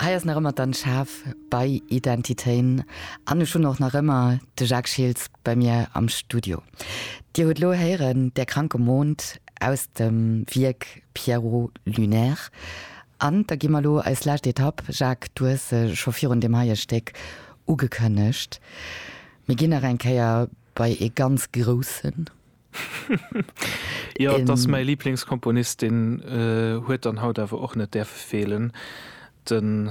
Hei ass nach ëmmer d'Anne Schaaf bei Identitéin an ech hunn och nach ëmmer de Jacques Schiltz bei mir am Studio. Dir hutt elo héieren Der kranke Mond aus dem Wierk Pierrot Lunaire. An da gi mer elo eis lescht Etapp. Jacques, du hues se scho virun deem heie Stéck ugekënnegt. Mir ginn nach eng Kéier bei ee ganz Groussen. Jo, et ass mäi Liblingskomponist, deen huet dann haut awer och net däerfe feelen, de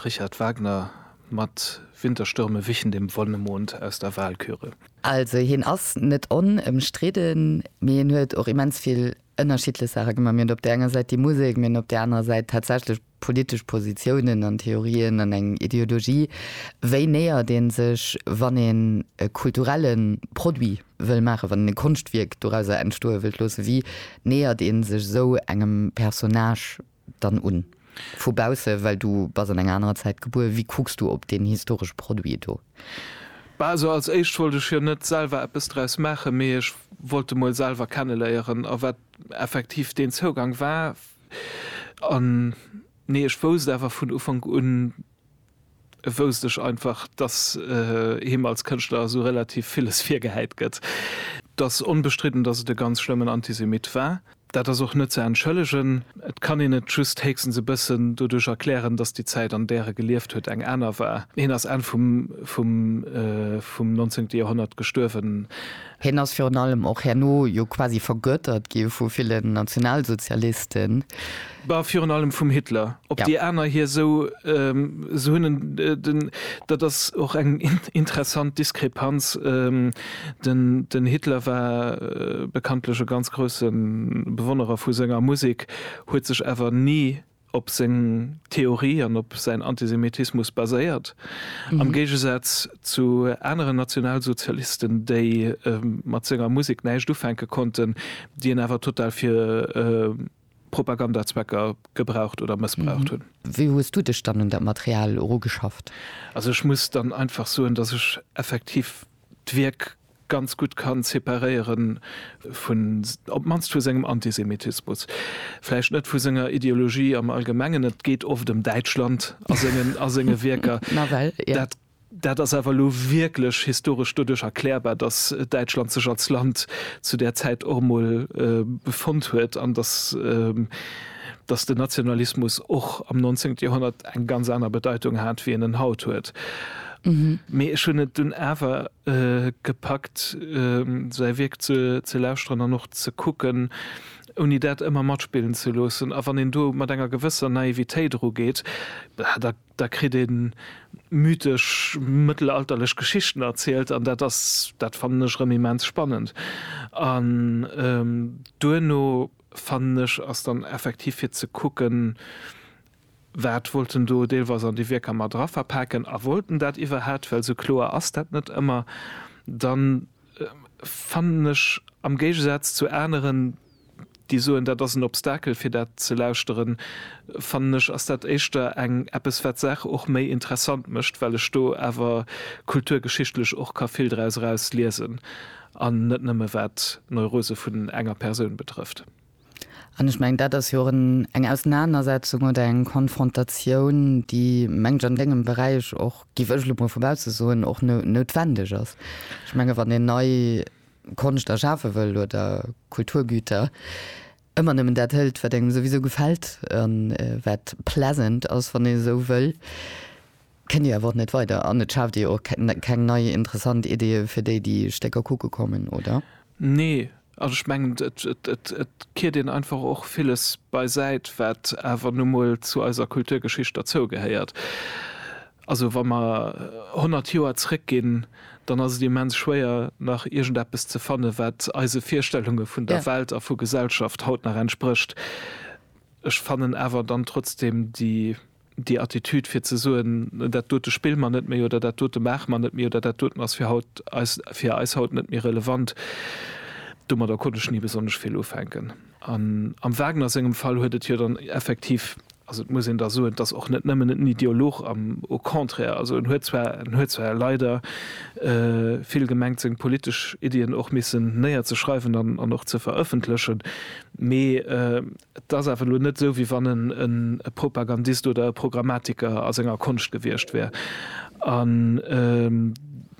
Richard Wagner mat Winterstürme wichen dem Wonnemond aus der Walküre. Also hien ass net onëmstridden, mee hien huet och immens vill ënnerschiddlech Saache gemaach. Mir hunn op där enger Säit déi Musek, mir hunn op där anerer Säit tatsächlech politesch Positiounen an Theorien an eng Ideologie, wéi nähert een sech, wann een e kulturelle Produit wëll maachen, wann een e Konschtwierk dorauser entstoe wëllt loossen, wéi nähert een sech esou engem Personnage dann un vu bausse, well du bass an enger anerer Zäit gebuer, wéi kucks du op deen historesche Produit do? Bah, also als éischt wollt ech jo net selwer eppes draus maachen, mee ech wollt e mol selwer kenneléieren a wat effektiv deen Zougang war, An nee, ech wousst awer vun Ufank un, wousst ech einfach, dass him als Kënschtler esou relativ villes virgehäit gëtt. Et ass onbestridden, dass et e ganz schlëmmen Antisemit war. Dat ass och net ze entschëllegen. Et kann een et just héchstens e bëssen doduerch erklären, dass déi Zäit, an där e gelieft huet, eng aner war. Hien ass Enn vum vum nonzéngte Joerhonnert gestuerwen. Hien ass virun allem och herno jo quasi vergöttert gi vu villen Nationalsozialisten. Bah, virun allem vum Hitler. Ob déi aner hie sou se hunn, den, dat ass och eng interessant Diskrepanz, den Hitler war bekanntlech e ganz grousse Bewonnerer vu senger Musek, huet sech awer ni op seng Theorie an op säin Antisemitismus baséiert, am Géigesaz zu aneren Nationalsozialisten, déi mat senger Musek näischt ufänke konnten, déi en awer total fir Propagandazwecker gebraucht oder mëssbraucht hunn. Wéi hues du dech dann un dat Material erugeschafft? Also ech muss dann einfach soen, datt ech effektiv d'Wierk ganz gutt kann separéieren vun, op d'mannst vu sengem Antisemitismus, vläicht net vu senger Ideologie am Allgemengen, et geet oft ëm Däitschland a sengen, a senge Wierker, Nawell, jo. Dat ass awer elo wierklech historesch doduerch erklärbar, datt Däitschland sech als Land zu där Zäit och emol befonnt huet an datt, datt den Nationalismus och am 19. Joerhonnert eng ganz aner Bedeitung hat, wéi en en haut huet. Mee ech hunn et dunn awer. gepackt säi Wierk ze lauschteren an och ze kucken, ouni dat ëmmer matspillen ze loossen. A wann een do mat enger gewësser Naivitéit erugeet, da kritt ee mythesch mëttelalterlech Geschichten erzielt an dat ass, dat fannen ech erëm immens spannend. An duerno fannen ech ass dann effektiv fir ze kucken, Wat wollt en do deelweis an déi Wierker mat era verpaken a wollt en dat iwwerhaapt? Well sou kloer ass dat net ëmmer. Dann fannen ech, am Géigesaz zu aneren, déi soen, dat ass en Obstakel fir dat ze lauschteren, fannen ech, ass dat éischter eng eppes wat d'Saach och méi interessant mécht, well ech do awer kulturgeschichtlech och ka vill draus eraus liesen an net nëmme wat d'Neurose vun enger Persoun betrëfft. An ech mengen, dat ass jo och eng Ausenanersetzung oder eng Konfrontatioun, déi, menge ech, an Dengem Beräich och, géif ech elo emol vu bausse soen, och noutwendeg ass. Ech menge wann een nei Konscht erschafe wëll oder Kulturgüter, ëmmer nëmmen dat hëlt, wat engem souwisou gefält a wat pleasant ass, wann een esou wëll. kënnt Dir awer och net weider an et schaaft Dir jo och keng nei interessant Ideeë fir déi, déi Stécker kucke kommen, oder? Nee, an ech mengen, et kiert een einfach och villes beisäit, wat awer nu mol zu eiser Kulturgeschicht derzougehéiert. Also wa mer honnert Joer zrëckginn, dann ass et immens schwéier, nach iergendeppes ze fanne wat eise Virstellunge vun der Welt a vu Gesellschaft haut nach entsprécht. Ech fannen awer dann trotzdem déi déi Attitude fir ze soen, dat dote spille mer net méi oder dat dote maache mer net méi oder dat doten ass fir haut eis, fir eis haut net méi relevant, domadder konnt ech ni besonnesch vill ufänken. An am Wagner sengem Fall huet et jo dann effektiv, also et muss een da soen, et ass och net nëmmen en Ideolog, am au contraire, also en huet zwar, en huet zwar leider vill gemengt seng politesch Iddien och missen néierzeschreiwen an och ze verëffentlechen, mee Et ass awer elo net esou, wéi wann en e Propagandist oder e Programmatiker a senger Konscht gewiescht wär. An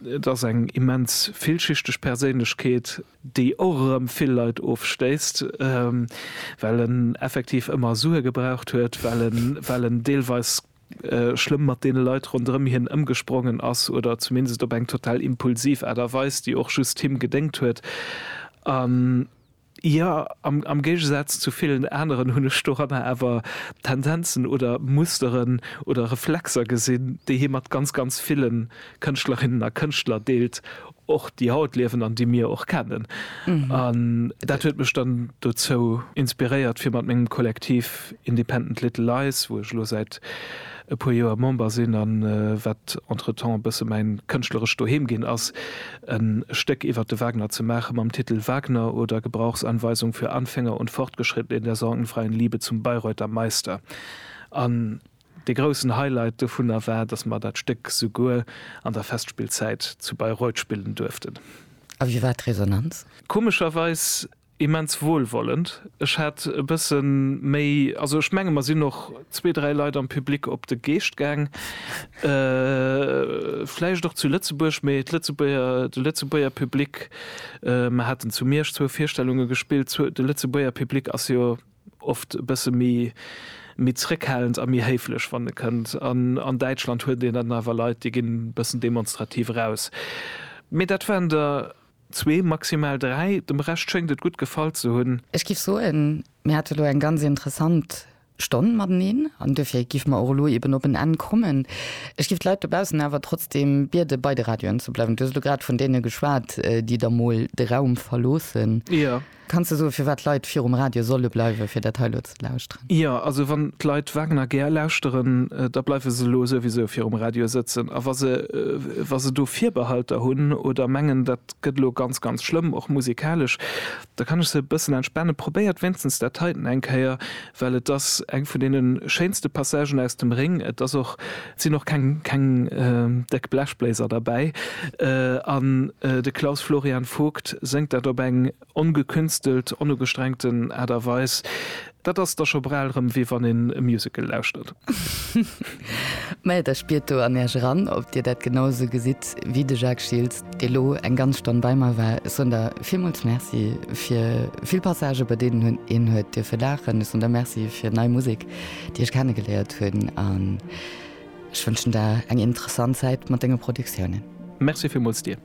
et ass eng immens villschichteg Perséinlechkeet, déi och erëm vill Leit ofstéisst, well en effektiv ëmmer Sue gebraucht huet, well en deelweis schlëmm mat deene Leit ronderëm hien ëmgesprongen ass oder zumindest op eng total impulsiv Aart a Weis, déi och just him gedéngt huet. Jo, am Géigesaz zu villen aneren hunn ech doranner awer Tendenzen oder Musteren oder Reflexer gesinn, déi hie mat ganz, ganz ville Kënschtlerinnen a Kënschtler deelt, och déi haut liewen an déi mir och kennen. An dat huet mech dann dozou inspiréiert, fir mat mengem Kollektiv Independent Little Lies, wou ech elo säit e puer Joer Member sinn a wat entretemps e bësse mäin kënschtlerescht Doheem ginn ass, en Stéck iwwer de Wagner ze maachen, mam Titel Wagner oder Gebrauchsanweisung für Anfänger und Fortgeschrittene in der sorgenfreien Liebe zum Bayreuther Meister. An de groussen Highlight dovunner war, dass mer dat Stéck souguer an der Festspillzäit zu Bayreuth spillen duerften. A wéi war d'Resonanz? Komescherweis Immens wohlwollend. Ech hat e bëssen méi, also ech mengen mer sinn och zwee, dräi Leit am Public op de Geescht gaang. Vläicht och zu Lëtzebuerg, mee d'Lëtzebuerger, de Lëtzebuerger Public, mer haten zu Miersch zwou Virstellunge gespillt, zu, de Lëtzebuerger Public ass jo oft e bësse méi, méi zrëckhalend a méi héiflech wann e kënnt. An an Däitschland huet een dann awer Leit, déi ginn e bëssen demonstrativ eraus. Mee dat waren der. Zwee, maximal dräi. Dem Rescht schéngt et gutt gefall ze hunn. Ech giff soen, mir hate lo eng ganz interessant Stonn mateneen an duerfir giffe mer och elo eben op en Enn kommen. Ech giff d'Leit dobaussen awer trotzdem biede bei de Radioen ze bleiwen. Du hues elo grad vun deene geschwat, déi da mol de Raum verloossen. Jo. Kanns de soen, firwat d'Leit virum Radio solle bleiwen, fir dat hei elo ze lauschteren? Jo, also wann d'Leit Wagner gär lauschteren, da bleiwe se elo souwisou virum Radio sëtzen. A wa se, wa se do Virbehalter hunn oder mengen, dat gëtt elo ganz, ganz schlëmm, och musikalesch, da kann ech se e bëssen entspannen, Probéiert wéinstens dat heiten eng Kéier, well et ass eng vun deene schéinste Passagen aus dem Ring, et ass och, et sinn och keng keng déck Blechbléiser derbäi an de Klaus Florian Vogt séngt dat op eng ongekünstelt, onugestrengten Aart a Weis, dat ass da scho bral erëm wéi wann een e Musical lauschtert. Mä da spiert do an Iech eran, ob Dir dat genau esou gesitt wéi de Jacques Schiltz. dee elo eng ganz Stonn bei mer war. Ech soen der villmools Merci fir vill Passagen, bei deenen hunn een huet dierfe laachen. Ech soen der Merci fir nei Musek, déi ech kenne geléiert hunn. An ech wënschen der eng interessant Zäit mat denge Produktiounen. Merci villmools dir.